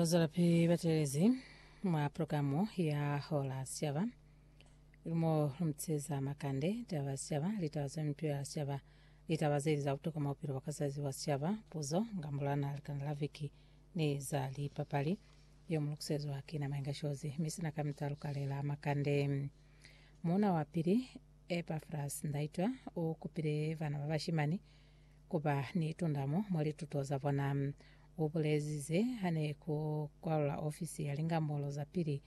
Zolapi batelezi mwa programu ya Hola Siaba lumo lumtseza makande taba siaba litaba za mtu ya siaba litaba zeli za kutoka maupilo bwa kazazi wa siaba puzo ngambulana likana la viki ni za lipapali yo mulukusezwa ki na mainga shozi misina ka mitalu kalela makande muna wa pili Epaphras Ndaitwa ukupile bana ba bashimani ku ba ni tundamo mwa lituto za bona. U bulezi ze ha ne ku kwalula ofisi ya lingambolo za pili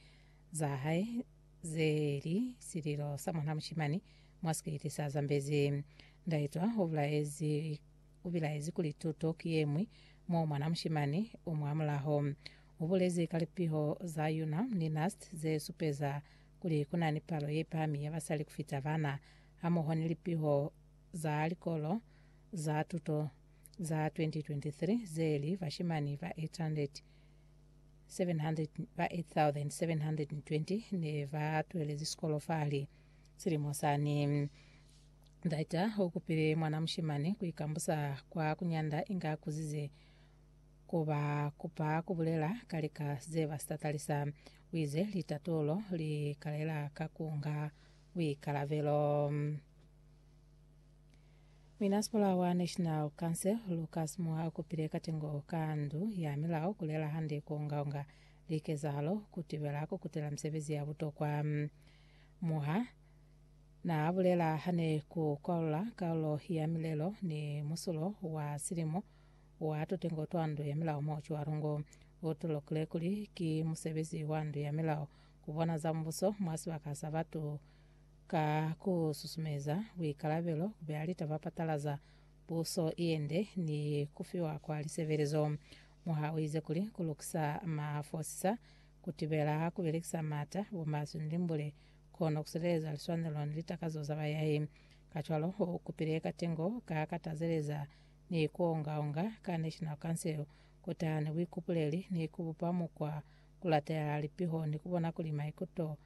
za hae ze li Sililo sa Mwan'a Mushimani mwa sikiliti sa Zambezi. Ndaitwa u bilaezi u bilaezi kuli tuto ki ye ñwi mo mwan'a mushimani u mwa mulaho. U bulezi ka lipiho za UNAM ni NUST ze supeza kuli ku na ni palo ye pami ya basali ku fita bana, hamoho ni lipiho za likolo za tuto za 2023 ze li bashimani ba 8,720 ne ba twelezi sikolo fa li silimo sani. Ndaita u kupile mwana mushimani ku ikambusa kwa ku nyanda inge a kuzize ku ba kupa ku bulela ka lika ze ba si tatalisa. U ize litatulo li kalela ka ku nga buikalabelo. Muinasikola wa National Council Lucas Moa ukupile katengo ka ndu ya milao kulela hande kuongaonga likezahalo kutibela kukutela misebezi ya butokwa. Moa naabulela hane kukwalula kaulo ya milelo ni musulo wa silimo wa tutengo twa ndu ya milao mo Chuarungu. Utolokile kuli ki musebezi wa ndu ya milao Ku bona za Mubuso mwa sibaka sa batu ka ku susumeza buikalabelo, ku beya litaba patalaza puso ye nde ni ku fiwa kwa lisebelezo. Muha u ize kuli, ku lukisa mafosisa, ku tibela ku belekisa maata, bumaswe ni limbule, kono ku sileleza liswanelo ni litakazo za bayahi. Kacwalo, u kupile katengo ka ka tazeleza ni ku onga-onga ka National Council ku taha ni buikupuleli ni ku bupa mukwa ku latela lipiho ni ku bona kuli maikuto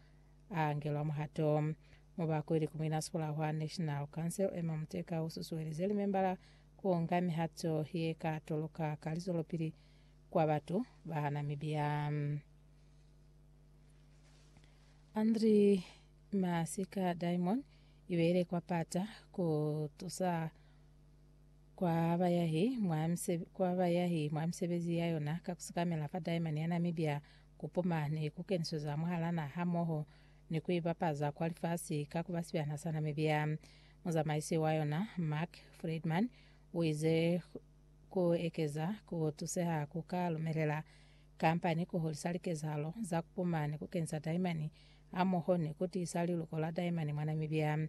a angelwa muhato. Mubakwe ili ku muinasikola wa National Council, Emma Muteka, u susuelize limembala ku nga mihato ye ka toloka ka lizwelopili kwa batu ba Namibia. Andri Masika Diamond ibeile kwa pata ku tusa kwa bayahi mwa misebe, kwa bayahi mwa misebezi ya yona ka kusikamela fa Daimani ya Namibia, kupuma ni kukenisweza mwahala naha hamoho ni kuibapaza kwa lifasi ka kuba sibana sa Namibia. Muzamaisi wa yona, Mark Freedman, uize, Ku ekeza ku tuseha ku ka lumelela kampani ku hulisa likezahalo za kupuma ni kukenisa Daimani hamoho ni kutiisa liluko la Daimani mwa Namibia.